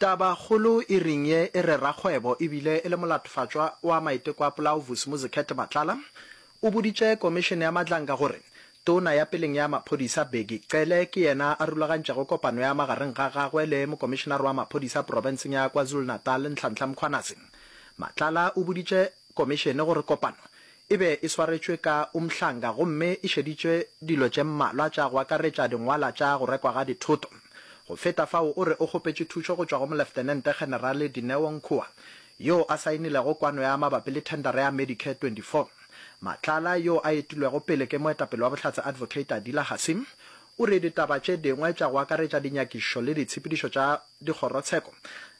Tabakgolo e reng ye e re rakgwebo e bile e le molatofatšwa wa maiteko a polao Vusimuzi Khethe Matlala o boditše komišene ya Madlanga gore tona ya peleng ya maphodisa Bheki Cele ke yena a rulagantšego kopano ya magareng ga gagwe le mokomišenare wa maphodisa profenseng ya KwaZulu-Natal Nhlanhla Mkhwanazi. Matlala o boditše komišene gore kopano E be e swaretšwe ka umhlanga gomme e šeditšwe dilo tše mmalwa tša go akaretša dingwala tša go rekwa ga dithoto. Go feta fao, o re o kgopetše thušo go tšwa go Moleftenente-Generale Dineo Nkhoa, yoo a saenilego kwano ya mabapi le thendara ya Medicare 24. Matlala, yoo a etilwego pele ke moetapele wa Bohlatse Advocate Adila Hassim, o re ditaba tše dingwe tša go akaretša dinyakišo le ditshepedišo tša dikgorotsheko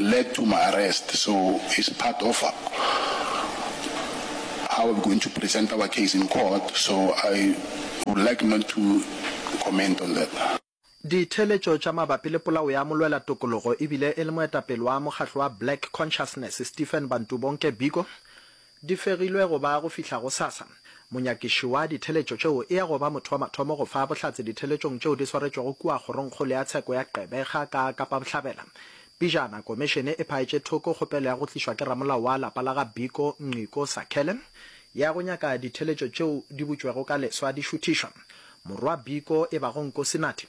led to my arrest so is part of how I'm going to present our case in court so I would like not to comment on that. Ditheeletšo tša mabapi le polao ya molwela tokologo e bile e le moetapele wa mokgatlo wa Black Consciousness Stephen Bantu Bonke Biko Di fegilwe go ba go fihla gosasa. Monyakišiwa ditheletšo tšeo e ya go ba motho wa mathomo go fa bohlatse ditheletšong tšeo di swaretšwego kua Kgorongkgolo ya Tsheko ya Gqeberha ka Kapa Bohlabela. Pijana, Komišene e phaetše thoko kgopelo ya go tlišwa ke ramolao wa lapa la ga Biko, Nciko Sakhele, ya go nyaka ditheletšo tšeo di butšwego ka leswa di šuthišwa. Morwa Biko, e bago Nkosi Nathi,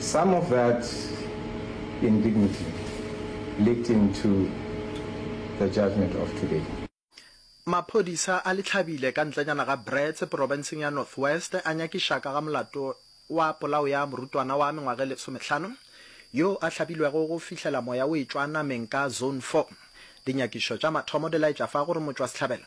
Some of that indignity leaked into the judgement of today. Maphodisa a Litlhabile ka ntlenyana ga Brits porobenseng ya North West a nyakiša ka ga molato wa polao ya morutwana wa mengwaga e lesomehlano yo a hlabilwego go fihlela moya o etšwa nameng ka Zone Four. Dinyakišo tša mathomo di laetša fa gore motšwasehlabelo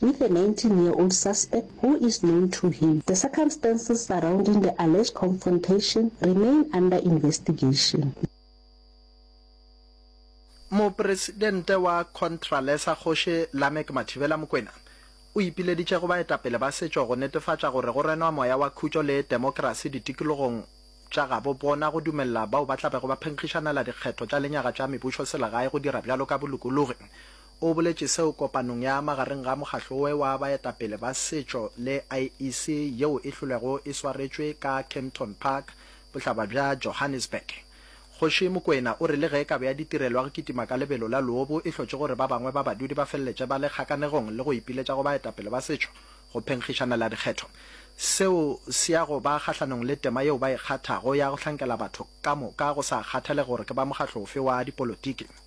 with a 19 year old suspect who is known to him. The circumstances surrounding the alleged confrontation remain under investigation. Mopresidente wa Contralesa Kgoši Lameck Mathibela Mokwena o ipileditše go baetapele ba setšo go netefatša gore go renwa moya wa khutšo le temokerasi ditikologong tša gabo bona go dumelela bao ba tlabego ba phenkgišanela dikgetho tša lenyaga tša mebušoselegae go dira bjalo ka bolokologi O boletše seo kopanong ya magareng ga mokgahlo oe wa baetapele ba setšo le IEC yeo e hlolego e swaretšwe ka Kempton Park, bohlaba bja Johannesburg. Kgoši Mokoena o re le ge kabo ya ditirelo ya go kitima ka lebelo la loobo e hlotše gore ba bangwe ba badudi ba feleletše ba le kgakanegong le go ipiletša go baetapele ba setšo go phenkgišanela dikgetho, seo se ya go ba kgahlanong le tema yeo ba e kgathago ya go hlankela batho ka moka go sa kgathale gore ke ba mokgahlo ofe wa dipolotiki.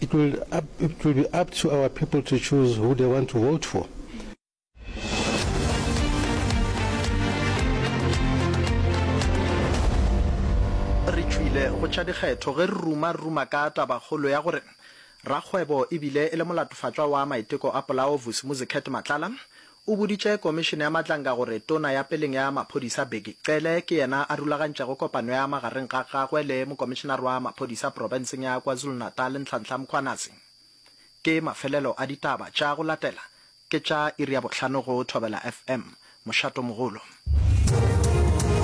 It will up, it will be up to our people to choose who they want to vote for. re tšwile go tša dikgetho ge re ruma-ruma ka tabakgolo ya gore rakgwebo ebile e le molatofatšwa wa maiteko a polaovusi muziket matlala O boditše Komišene ya Matlanka gore Tona ya peleng ya Maphodisa Bheki Cele ke yena a rulagantšego kopano ya magareng ga gagwe le Mokomišenare wa Maphodisa Profenseng ya KwaZulu-Natal Nhlanhla Mkhwanazi. Ke mafelelo a ditaba tša go latela ke tša iri ya bohlano go Thobela FM. Mošato mogolo.